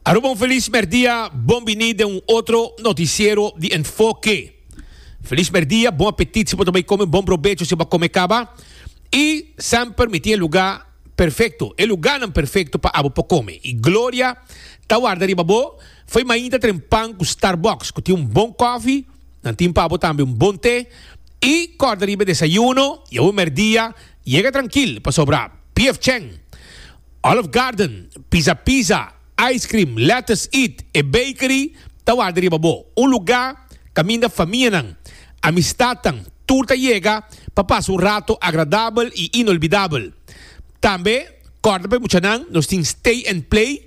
Aruba un feliz merdia, bon bini den un otro noticiero di Enfoke. Feliz merdia, bon apetit si bo ta bai come, bon probecho si bo a come caba. Y semper mi tin e lugar perfecto, e lugarnan perfecto pa abo por come. Y gloria ta warda riba bo. Fo'i mainta tren pan cu Starbucks, cu tin un bon coffee, nan tin pa abo tambe un bon te. Y corda riba e desayuno y abo merdia. Yega trankil pasobra PF Chang, Olive Garden, Pizza Pizza, Ice Cream, Lettuce Eat e Bakery ta warda riba bo. Un lugá kaminda famianan, amistadnan tur ta yega pa pasa un rato agradabel i inolbidabel. Tambe kòrda pa e muchanan nos tin Stay and Play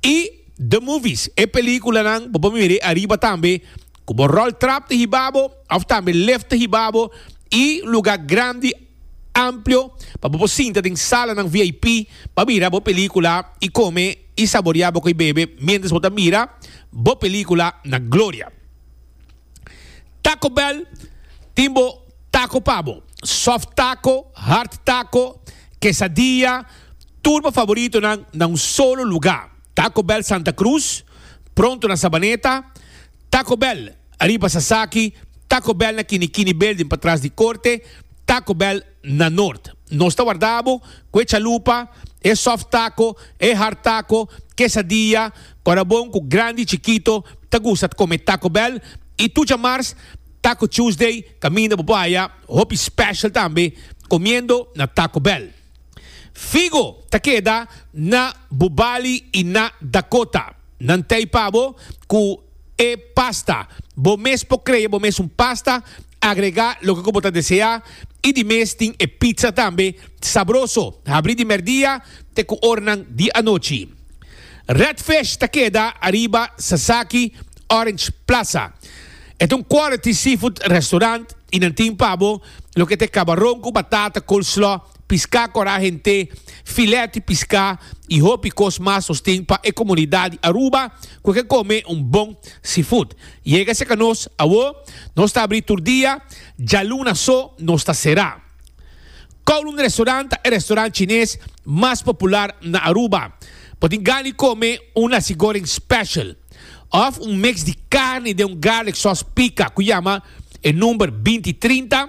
i The Movies, e pelíkulanan bo por mir'é ariba tambe. Ku bo ròl trap ta hiba bo òf tambe lef ta hiba bo i lugá grandi amplio pa bo por sinta den salanan vip pa mira bo pelíkula i kome i saboreá bo koe bebe miéntras bo ta mira bo pelíkula na gloria. Taco Bell tin bo tako pa bo, sòf tako, hard tako, kesadilla, tur bo favoritonan na un solo lugá. Taco Bell Santa Cruz, pronto na Sabaneta, Taco Bell ariba Sasaki, Taco Bell na Kinikini Building patras di Corte, Taco Bell na Noord. Nos ta warda bo cu e chalupa, e soft taco, e hard taco, quesadilla, ora bon cu grandi y chikito ta gusta ta come Taco Bell y tu djamars Taco Tuesday caminda bo por haya hopi special tambe comiendo na Taco Bell. Figo ta keda na bo bali i na Dakota. Nan t'ei pa bo ku e pasta. Bo mes por krea bo mes un pasta, agregá loke ku bo ta deseá i di mes tin e pizza tambe sabroso, habrí di merdia te ku oranan di anochi. Redfish ta keda ariba Sasaki Orange Plaza. E ta un quality seafood restorant i nan tin pa bo Loke t'e kabaron ku batata, coleslaw, piská kòrá hent'é, filèt di piská i hopi kos mas nos tin pa e komunidat di Aruba ku ke kome un bon seafood. Yega serka nos, Awó nos ta abrí tur dia, djaluna so nos ta será. Kowloon Restaurant ta e restaurant chines mas popular na Aruba. Bo tin gana di kome un nasi goreng special. Òf un mèks di karni den un garlik sòs pika ku yama e number binti trinta.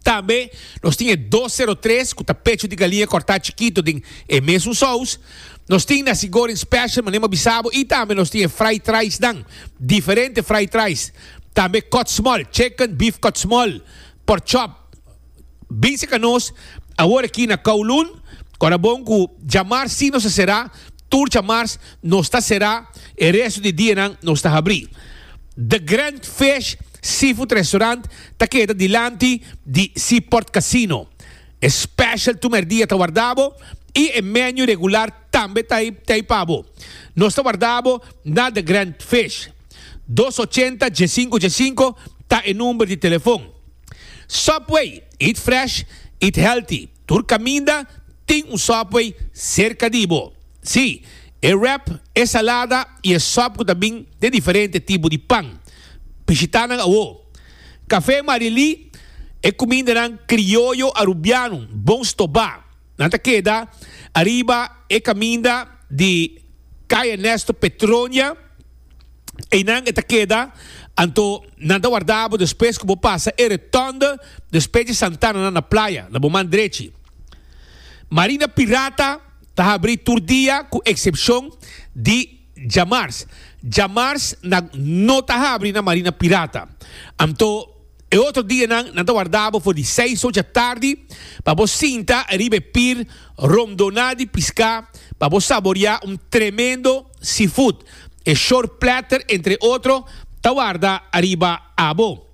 Tambe nos tin e dos sero tres ku ta pecho di galiña kòrtá chikitu den e mesun sous. Nos tin nasi goreng special manera mi a bisa bo i tambe nos tin e fried rice nan, diferente fried rice. Tambe kòtsmòl, chicken, beef kòtsmòl, pork chop. Bisica nos awor aki na Kowloon, ora bon cu djamars si nos a cera, tur djamars nos ta cera, e resto di dianan nos ta habri. The Grand Fish Seafood Restaurant ta keda dilanti di Seaport Casino. E special tu merdia ta warda bo y e menu regular tambe ta ey pa bo. Nos ta warda bo na The Grand Fish. Dos ochenta, dje sinku dje sinku ta e number di telefon. Subway, eat fresh, eat healthy, tur kaminda tin un Subway serka di bo. Sí, e wrap, e salada i e sòp ku ta bin den diferente tipo di pan. Bishitá nan awó. Kafé Marielí, e kumindanan krioyo Arubiano bon stobá. Nan ta keda ariba e kaminda di Kay Ernesto Petronia, einan e ta keda, anto nan ta warda bo despues ku bo pasa e Rotonde despues di Santana nan na Playa, na bo man drechi. Marina Pirata ta habri tur dia ku eksepshon di djamars. Djamars nan no ta habri na Marina Pirata, anto E otro dianan nan ta warda bo for di seis ocha tardi pa bo sinta riba e pir rondona di piská pa bo saboreá un tremendo seafood. E shore platter entre otro ta warda ariba abo.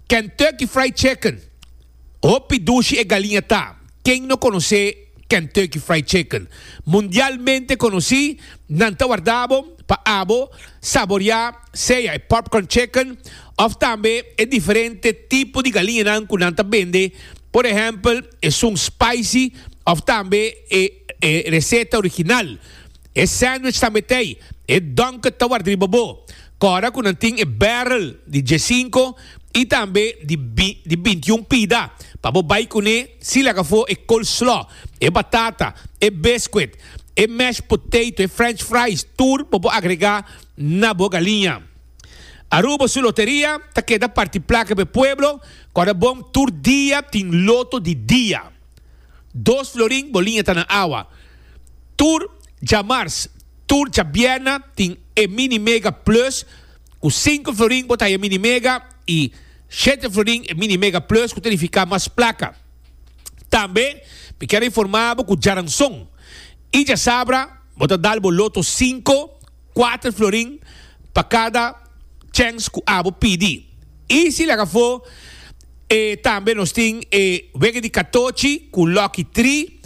Kentucky Fried Chicken, hopi dushi e galiña ta. Ken no konosé Kentucky Fried Chicken? Mundialmente konosí, nan ta warda bo pa abo saboriá sea e popcorn chicken òf tambe e diferente tipo di galiñanan ku nan ta bende, por ehèmpel esun spicy òf tambe e reseta original. E sandwich ta metei. E donket ta warda riba bo. Kora ku nan tin e barrel di diesinko i tambe di di bintiun pida pa bo bai kuné si laga afó e coleslaw, e batata, e biscuit, e mashed potato, e french fries tur pa bo agregá na bo galiña. Aruba su loteria ta keda parti plaka pa e pueblo kora bon tur dia tin loto di dia. Dos florin bo liña ta na awa. Tur djamars, tur djabierna tin e Mini Mega Plus ku sinku florin bo ta haya Mini Mega i shete florin e Mini Mega Plus ku ta nifiká mas plaka. Tambe mi kier informá bo ku djaranson i djasabra bo ta dal bo loto sinku Kuater florin pa kada chèns ku abo pidi. I si laga afó e tambe nos tin e wege di katochi ku Lucky Tri,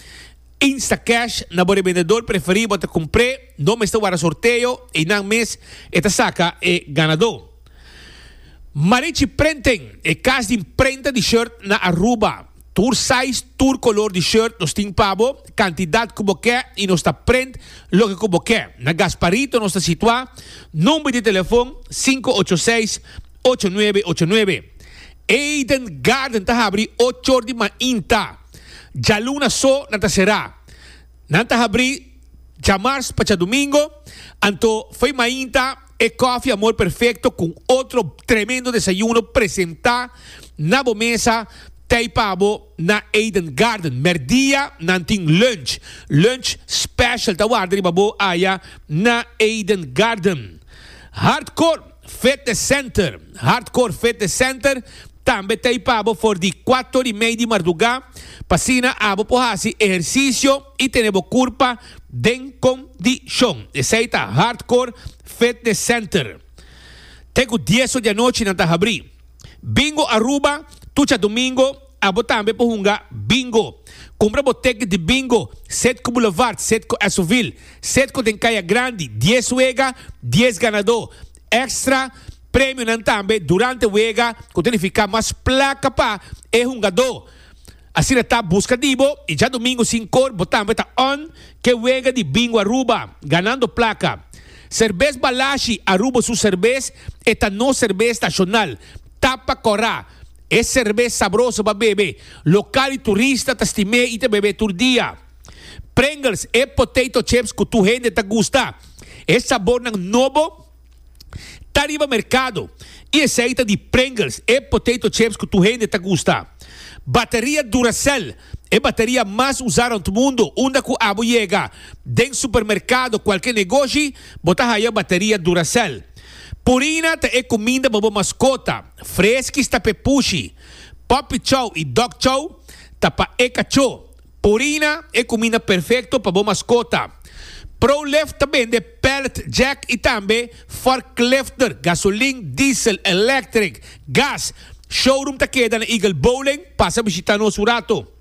Instacash na bo rebendedor preferí bo ta kumpr'é, no mester wara sorteo i nan mes e ta saka e ganadó. Marichi Printing, e kas di prenta di shirt na Aruba. Tur size, tur kolor di shirt nos tin pa bo, kantidat ku bo ke i nos ta print loke ku bo ke. Na Gasparito nos ta situá, number di telefon sinku ocho seis, ocho nuebe ocho nuebe. Eden Garden ta habri ochor di mainta. Djaluna so nan ta será. Nan ta habri djamars pa djadumingo, anto foi mainta. E Coffee Amor Perfecto cu otro tremendo desayuno presenta na bo mesa tey pa bo na Eden Garden. Merdia nan tin lunch. Lunch special ta warda riba bo aya na Eden Garden. Hardcore Fitness Center, Hardcore Fitness Center tambe tey pa bo for di cuato ori mey di marduga pa asina abo por haci ehercicio y tene bo curpa. den kondishon. Esei ta Hardcore Fitness Center. Te ku dies or di anochi nan ta habrí. Bingo Aruba, Tucha Domingo, Abo tambe por hunga Bingo. Kumpra bo ticket di Bingo, Citgo Boulevard, Citgo Esovil. Citgo den Kaya Grandi, dies wega, dies ganadó. Extra premionan tambe durante wega ku ta nifiká mas plaka pa e hungadó. Asina ta, buska di bo y djadomingo sin cor bo tambe ta on ke wega di Bingo Aruba, ganando placa. Cervez Balashi, Aruba su cervez, e ta nos cervez nacional. Tapa cora, e cervez sabroso pa bebe, local y turista ta stim'é y ta bebe tur dia. Pringles, e potato chips cu tur hende ta gusta. E sabornan nobo. ta riba merkado i esei ta di Pringles, e potato chips ku tur hende ta gusta. Bateria Duracell, e bateria mas usá rònt mundu, unda ku abo yega den supermerkado, kualke negoshi, bo ta haya bateria Duracell. Purina ta e kuminda pa bo maskota, Friskies ta p'e pushi, Puppy Chow i Dog Chow ta pa e kachó. Purina e cuminda perfecto pa bo mascota. ProLift ta bende pallet jack y tambe forklifter, gasolin, diesel, electric, gas. Showroom ta keda na Eagle Bowling, pasa bishita nos un rato.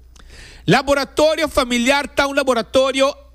Laboratorio Familiar ta un laboratorio.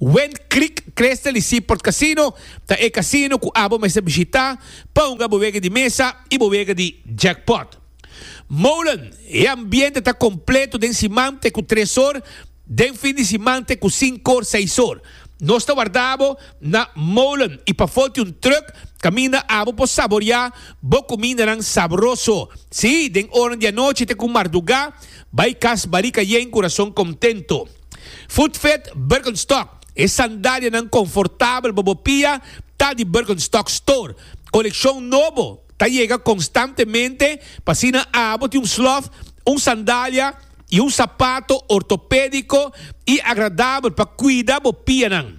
Went Creek Crystal y Seaport Casino ta e casino cu abo mester bishita pa hunga bo wega di mesa y bo wega di jackpot. Molen, E ambiente ta completo den siman te cu tres or, den fin di siman te cu cinco or, seis or. Nos ta warda bo na Molen y pafo tin un truck caminda abo por saborea bo cumindanan sabroso. Sí, den oran di anochi te cu marduga, bay cas Barica Yen cu razon contento. Footfit Birkenstock, E sandalianan konfortabel pa bo pia ta di Birkenstock Store. Kolekshon nobo ta yega konstantemente, pa asina abo tin un slof, un sandalia i un sapato ortopédiko i agradabel pa kuida bo pianan.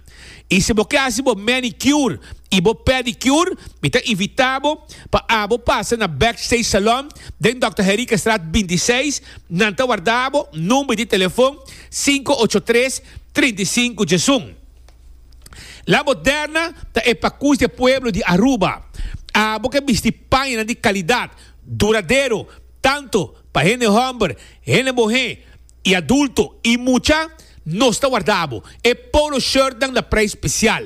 Y si bo ke haci bo manicure y bo pedicure, mi ta invita bo pa abo pasa na Backstage Salon den Dòkter Henriquestraat bintiseis. Nan ta warda bo number di telefon sinku ocho tres, trinta i sinku djesun. La Moderna ta e pakus di e pueblo di Aruba. Abo ke bisti pañanan di kalidad, duradero, tantu pa hende hòmber, hende bohé I adulto i mucha, nos ta warda bo. E polo shirtnan na preis spesial.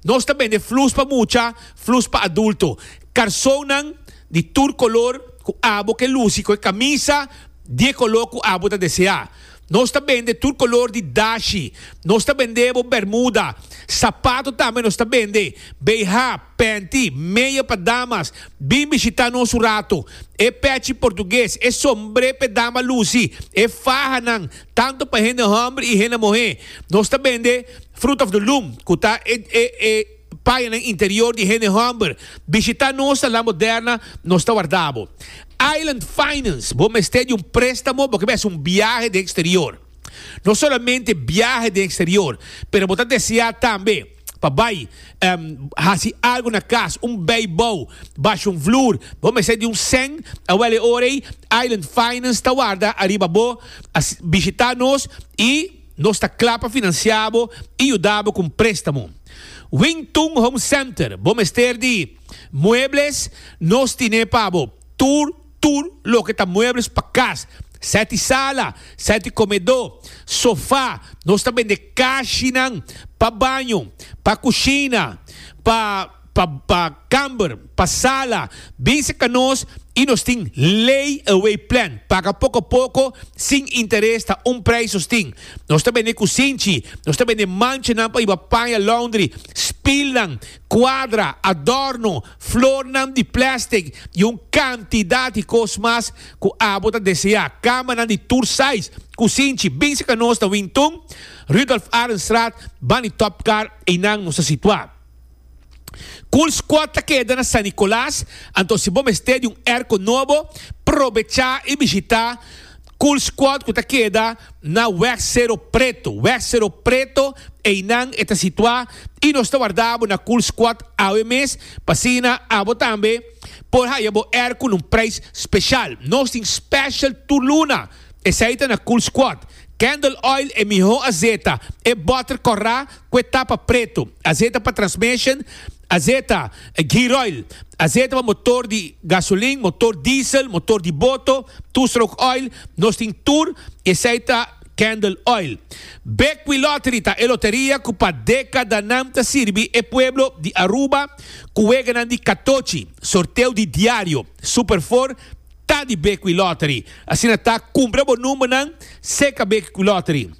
Nos ta bende flus pa mucha, flus pa adulto. Karsonnan di tur kolor ku abo ke lusi ku e kamisa di e kolor ku abo ta deseá. Nos ta bende tur kolor di dashi. Nos ta bende bo bermuda, sapato tambe nos ta bende, BH, Panty, meia pa damas, bin bishita nos un rato. E pechi portugues, e sombre p'e dama lusi, e fahanan, tanto pa hende homber y hende muhe. Nos ta bende Fruit of the Loom, cu ta e e e payanan interior di hende homber. Bishita nos na La Moderna, nos ta warda bo. Island Finance, bo mester di un prestamo, bo ke bes un biahe den exterior. No solamente biahe den exterior, pero bo ta desea tambe. pa bai em hasi algo na kas, un beibou, basho un vloer, bo mester di un sèn, awel e ora ei Island Finance ta warda ariba bo, así bishita nos i nos ta kla pa finansia bo i yuda bo ku un préstamo. Wing Tung Home Center, bo mester di muebles, nos tine pa bo tur, Tur loke ta muebles pa cas, seti sala, seti comedó, sofá, nos ta bende cashinan pa baño, pa cushina, pa pa pa camber, pa sala, bin cerca nos y nos tin lay away plan, paga poco a poco sin interes ta un prijs nos tin. Nos ta bende cusinchi, nos ta bende manchanan pa iba paña laundry, spilnan, cuadra, adorno, flornan di plèstik i un kantidat di kos mas ku abo ta deseá. Kamanan di tur sais, kusinchi, bin seka nos na Wington, Rudolf Arendstraat, Bani Topkar, einan nos ta situá. Cool Squad ta keda na San Nicolas, anto si bo mester di un erko nobo, probechá i bishitá Cool Squad ku ta keda na Wèg Sero Preto. Wèg Sero Preto, einan e ta situá. i nos ta warda bo na Cool Squad awe mes pa asina abo tambe por haya bo air ku un preis speshal. Nos tin special tur luna, esei ta na Cool Squad. Candle Oil e mihó azeta, e butter kòrá ku e tapa pretu, azeta pa transmission, azeta gear oil, azeta pa motor di gasolin, motor diesel, motor di boto, two stroke oil, nos tin tur i esei ta. Candle Oil. Bekwí Lottery ta e loteria ku pa dékadanan ta sirbi e pueblo di Aruba ku weganan di katochi, sorteo di diario, Super Four ta di Bekwí Lottery. Asina ta, kumpra bo numbernan serka Bekwí Lottery.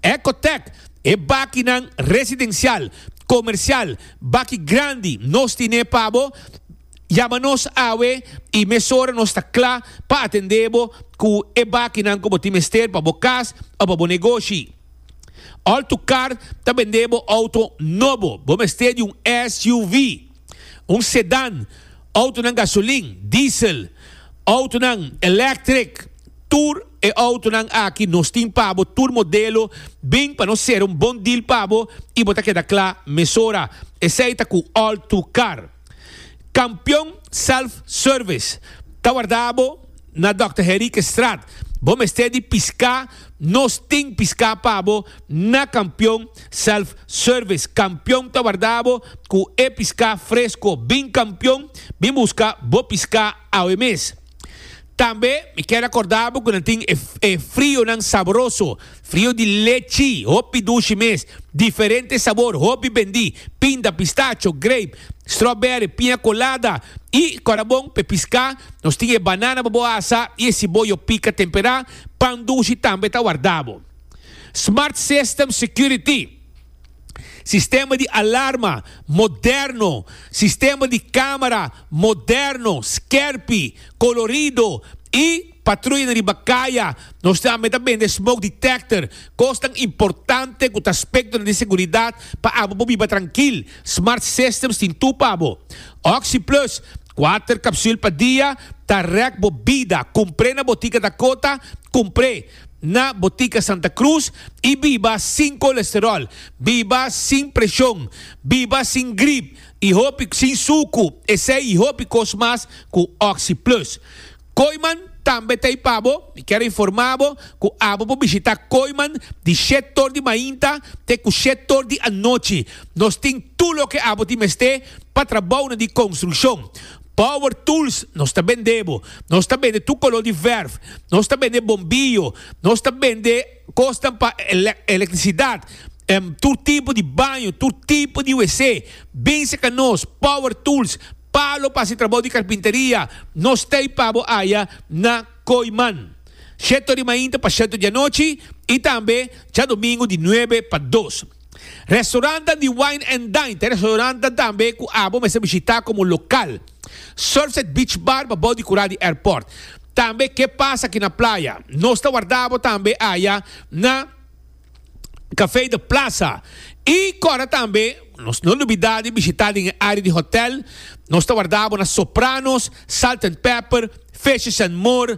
Ecotech, E bakinan residencial, comercial, baki grandi nos tine pa bo. Yama nos awe i mesora nos ta kla pa atendé bo ku e bakinan ku bo tin mester pa bo kas òf pa bo negoshi. All to Car ta bendé bo outo nobo, bo mester di un SUV, un sedan, outonan gasolin, diesel, outonan electric, tur e outonan aki nos tin pa bo, tur modelo, bin pa nos sera un bon deal pa bo i bo ta keda kla mesora. Esei ta ku All to Car. Kampion Self Service ta warda bo na Dòkter Henriquestraat. Bo mester di piská, nos tin piská pa bo na Kampion Self Service. Kampion ta warda bo ku e piská fresko. Bin Kampion, bin buska bo piská awe mes. Tambe mi kier acorda bo cu nan tin e frionan sabroso, frio di lechi, hopi dushi mes, diferente sabor, hopi bendi, pinda, pistacho, grape, strawberry, piña colada, y cora bon p'e pisca nos tin e banana pa bo asa y e ciboyo pica tempera, pan dushi tambe ta warda bo. Smart System Security. sistema di alarma moderno, sistema di kamera moderno, skèrpi, kolorido i patruya na riba kaya. Nos tambe ta bende smoke detector, kosnan importante ku ta spektro di seguridat pa abo por biba trankil. Smart Systems tin tur pa bo. Oxyplus, kuater kapsül pa dia ta rèk bo bida. Kumpr'é na botika Dakota, kumpr'é. na Botica Santa Cruz y biba sin colesterol, biba sin presion, biba sin grip y hopi sin sucu esey y hopi cos mas cu Oxi Plus. Koiman tambe ta ahí pabo, mi kier informa bo cu abo por bishita Koiman di shett tor di mainta te cu shett tor di anochi. Nos tin tur loke abo tin mester pa trabounan di construccion. Power tools, nos ta bende bo. Nos ta bende tur color di verf. Nos ta bende bombillo. Nos ta bende cosnan pa electricidad. Tur tipo di baño, tur tipo di WC. Binse ca nos, Power Tools, palo pa haci trabou di carpinteria. Nos t'ey pa bo aya na Coiman. Sheto di mainta pa sheto di anochi y tambe djadomingo di nuebe pa dos. Restaurantnan di Wine and Dine ta e restaurantnan tambe ku abo mester bishitá komo lokal. Surfside Beach Bar pabou di kura di airport. Tambe Ke Pasa Aki na Playa. Nos ta warda bo tambe aya na Café de Plaza. I kòrda tambe nos no lubidá di bishitá den e área di hotèl. Nos ta warda bo na Sopranos, Salt and Pepper, Fishes and More,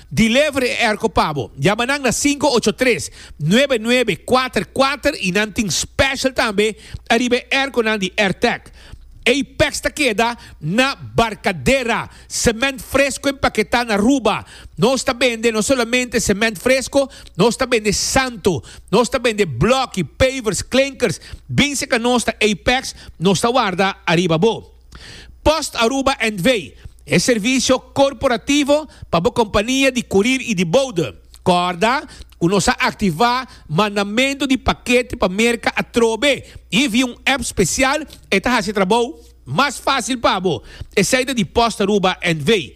Di lever e erco pa bo. Yama nan na sinku ocho tres, nuebe nuebe, kuater kuater y nan tin special tambe ariba e erconan di Airtec. Ey pex ta keda na Barcadera, cement fresco empaqueta na Aruba. Nos ta bende no solamente cement fresco, nos ta bende santo. Nos ta bende bloki, pavers, klinkers. Bin si ca nos ta Apex, nos ta warda ariba bo. Post Aruba NV. E servisio korporativo pa bo kompania di kurir i di boude. Kòrda ku nos a aktivá mandamentu di pakete pa Merka atrobe i via un app spesial, e ta hasi e trabou mas fásil pa bo. Esei ta di Post Aruba NV.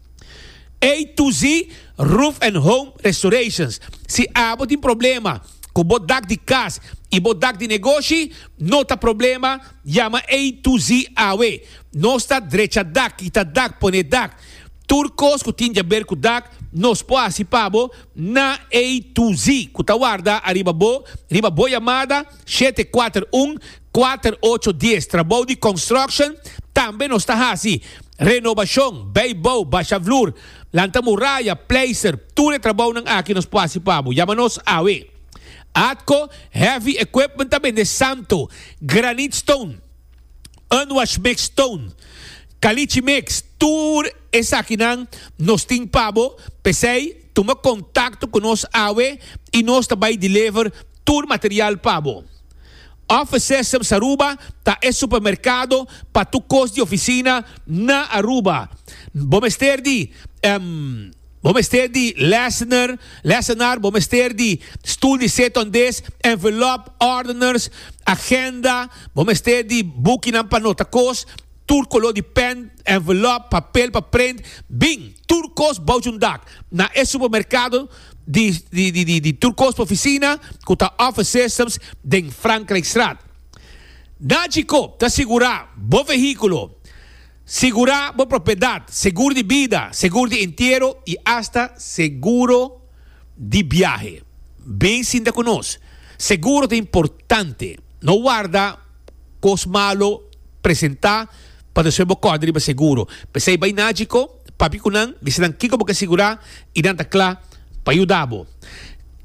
A-Z Roof and Home Restorations Si abo tin problema ku bo dak di kas i bo dak di negoshi, no ta problema, yama A-Z awe. Nos ta drecha dak, kita dak, pone dak. Tur kos ku tin jaber ku dak nos por hasi pa bo na A-Z ku ta warda ariba bo riba bo yamada. Shete kuater un kuater ocho dies trabou di construction tambe nos ta hasi, renobashon, bay bou, basha vloer, lanta muraya, pleister, tur e trabounan aki nos por hasi pa bo, yama nos awe. Atco heavy equipment ta bende Santo, granite stone, unwash mix stone, caliche mix, tur Esakinan nos tin pa bo, p'esei tuma kontakto ku nos awe i nos ta bai deliver tur material pa bo. Office Systems Aruba ta e supermerkado pa tur kos di ofisina na Aruba. Bo mester di Bo mester di lessener, lessenaar, bo mester di stoel di seton des, envelop, ordeners, agenda, bo mester di bukinan pa nota kos, tur color di pen, envelope, papel pa prent, bin, tur cos bouch un dak. Na e supermercado di, di, di, di, di tur cos pa oficina cu ta Office Systems den Frankrijkstraat. Na Djikoop ta sigura bo vehiculo, sigura bo propiedad, seguro di bida, seguro di entiero y hasta seguro di biahe. Bin sinta cu nos. Seguro ta importante. No warda. Cos malo presenta pa nos fe bo corda riba seguro. Pesey bay na Chico, papi cu nan, dici nan kico bo ke sigura y nan ta cla pa yuda bo.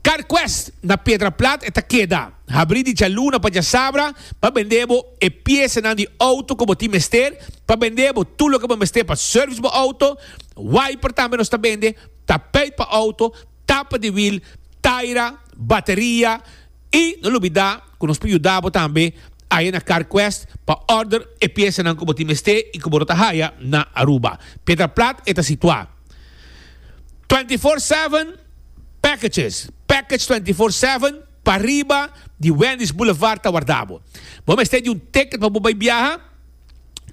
Car Quest na Piedra Plat e ta keda. Habri di djaluna pa djasabra pa bende bo e piesa nan di auto cu bo tin mester pa bende bo tur loke bo mester pa service bo auto. Wiper tambe nos ta bende, tapeit pa auto, tapa di wiel, taira, bateria I no lo bida ku nos por yuda bo tambe aya na CarQuest pa order e piesanan ku bo tin mester i ku bo lo ta haya na Aruba. Piedra Plat e ta situá. Twenty Four Seven Packages, Package Twenty Four Seven, pariba di Wendy's Boulevard ta warda bo. Bo mester di un ticket pa bo bai biaha?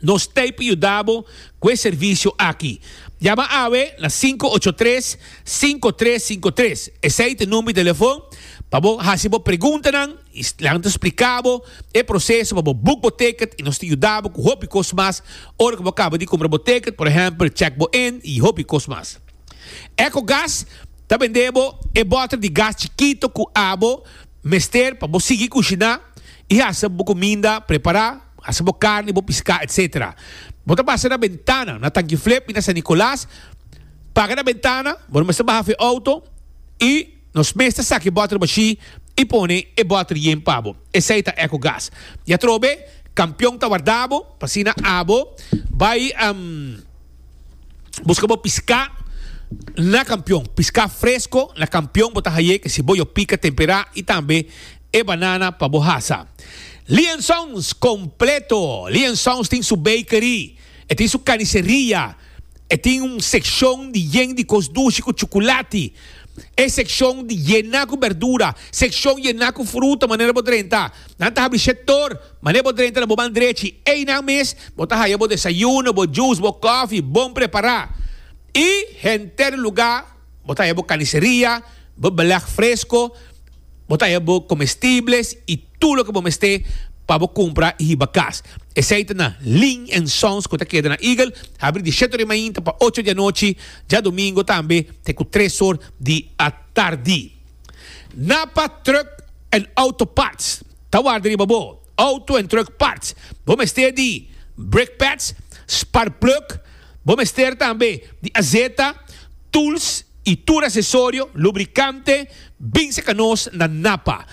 Nos ta ei pa yuda bo ku e servisio aki. Yama awe na sinku ocho tres, sinku tres sinku tres. Esei ta e number di telefon pa bo hasi bo preguntanan i nan ta splika bo e proseso pa bo boek bo ticket i nos ta yuda bo ku hopi kos mas ora ku bo kaba di kumpra bo ticket, por ehempel chek bo in i hopi kos mas. Ecogas ta bende bo e bottle di gas chikito ku abo mester pa bo sigui kushiná i hasi bo kuminda prepará. hasi bo karni, bo piská, etc. Bo ta pasa na bentana, na Tanki Flip i na San Nicolas, paga na bentana, bo no mester baha fu e outo i nos mes ta saki e bòter bashí i pone e bòter yen pa bo. Esei ta Ecogas. I atrobe, kampion ta warda bo, pa asina abo bai buska bo piská na kampion. Piská fresko na kampion bo ta haye ke si bo yopika, temperá i tambe. e banana pa bo hasa. Liansons completo, Liansons tin su bakery, e tin su carniceria, e tin un seccion di yen di cos dushi cu chuculati, e seccion di yena cu berdura, seccion yena cu fruta manera bo drenta. Nan ta habri shet door manera bo drenta na bo man drechi. Einan mes bo ta haya bo desayuno, bo juice, bo coffee bon prepara. Y henter lugar Bo ta haya bo carniceria, bo beleg fresco, bo ta haya bo comestibles y tur loke bo mester pa bo cumpra y hiba cas. Esey ta na Lin and Sons cu ta keda na Eagle, habri di sheto di mainta pa ocho di anochi, djadomingo tambe te cu tres or di atardi. Napa Truck and Auto Parts ta warda riba bo auto en truck parts. Bo mester di brake pads, spark plug, Bo mester tambe di azeta, tools y tur asesorio, lubricante, binse ca nos na Napa.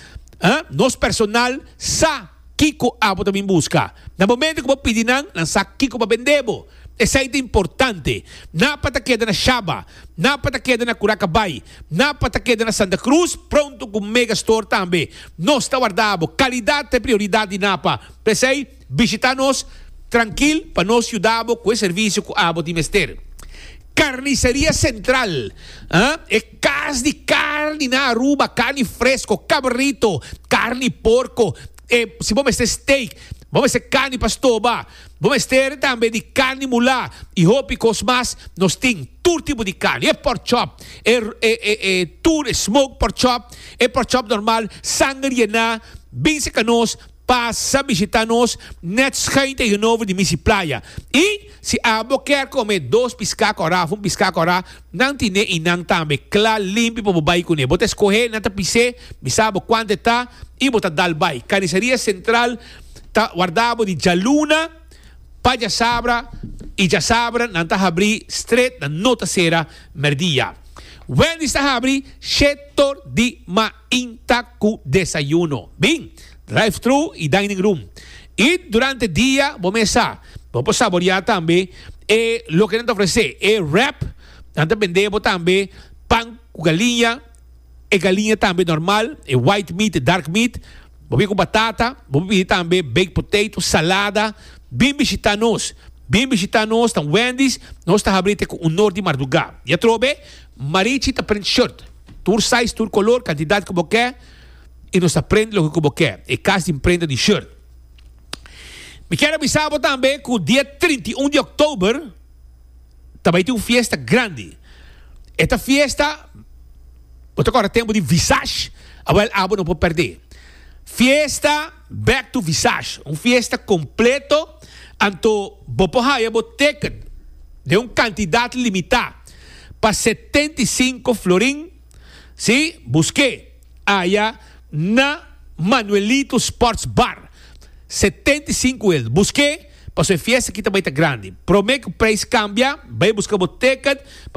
Nos personal sa kico abo ta bin busca. Na momento cu bo pidi nan, nan sa kico pa bende bo. Esai ta importante. Napa ta keda na Shaba. Napa ta keda na Curacabay. Napa ta keda na Santa Cruz pronto cu Megastore tambe. Nos ta warda abo. Calidad ta e prioridad di Napa. P'esai. Bishita nos trankil pa nos yuda bo ku e servisio ku abo tin mester. Karniseria Sentral, e kas di karni na Aruba, karni fresko, kabrito, karni porko, e si bo mester steak, bo mester karni pa stoba, bo mester tambe di karni mulá i hopi kos mas. Nos tin tur tipo di karni, e pork chop, e tur e smoke pork chop, e pork chop normal, sanger yená, binse ka nos Pasa bishita nos net schuin tegenover di Misi Playa y si abo kier come dos pisca cora of un pisca cora nan tine y nan tambe cla limpi pa bo bay cune. Bo ta escohe nan ta pise, mi sa abo cuanta e ta y bo ta dal bay. Carniceria Central ta warda abo di djaluna pa djasabra y djasabra nan ta habri stret nan no ta cera merdia. Wendy's ta habri she tor di ma. Tinta cu desayuno, bin, drive-thru y dining room. Y durante dia bo mesa bo por saborea tambe e loke nan ta ofrece, e wrap, nan ta bende bo tambe pan cu galiña, e galiña tambe normal, e white meat, e dark meat, bo bini cu batata, bo por pidi tambe baked potato, salada, bin bishita nos, bin bishita nos, ta un Wendy's, nos ta habri te cu un nor di marduga. Di atrobe, Marichi ta print shirt. Tur size, tur color, cantidad cu bo ke y nos ta prende loke cu bo ke. E cas di imprenta di shirt. Mi kier a bisa bo tambe cu dia trinta i un di oktober ta bay tin un fiesta grandi. E ta fiesta, bo ta corda tempo di Visage? A wel abo no por perde. Fiesta Back to Visage. Un fiesta completo anto bo por haya bo ticket den un cantidad limita. pa setenta i sinku florin, si, busk'é aya na Manuelito Sports Bar, setenta i sinku el, busk'é, pasobra e fiesta aki ta bai ta grandi. Promé ku preis kambia, bai buska bo tèkèt,